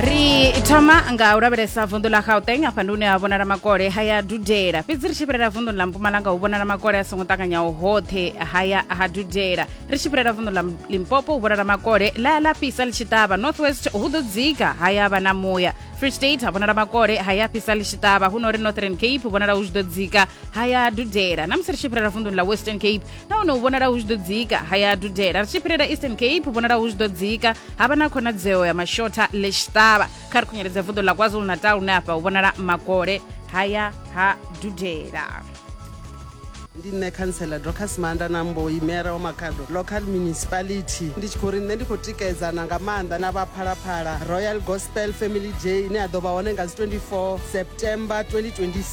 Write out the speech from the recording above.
ri thoma nga u lavhelesa vunḓu ḽa gauteng afha ndi hune ha vhonala makole ha ya dudela fhedzi ri tshi fhirela vunḓuni ḽa mpumalanga hu vhonala makole a songo ṱanganyaho hoṱhe ha ya ha dudela ri tshi fhirela vunḓu ḽa limpopo hu vhonala makole ḽa ya ḽa fhisa ḽi tshi ṱavha north west hu ḓo dzika ha ya vha na muya free state ha vhonala makole ha ya fhisa ḽi tshi ṱavha hu no ri northern cape vhonala hu tshi ḓo dzika ha ya dudela na musi ri tshi fhirela vunḓuni ḽa western cape nahone hu vhonala hu tshi ḓo dzika ha ya dudela ri tshi fhirela eastern cape hu vhonala hu tshi ḓo dzika ha vha na khonadzeo ya mashotha lexitava kha ri khunyeledza vuḓo ḽa kwazulu natal hune afha hu vhonala makole ha ya ha dudela ndi nṋe khantsela docas manda na mboyi mera wa makhado local municipality ndi tshi khou ri nṋe ndi khou tikedzana nga maanḓa na vha phalaphala royal gospel family day ine ya ḓo vha hone nga dzi 24 september 2026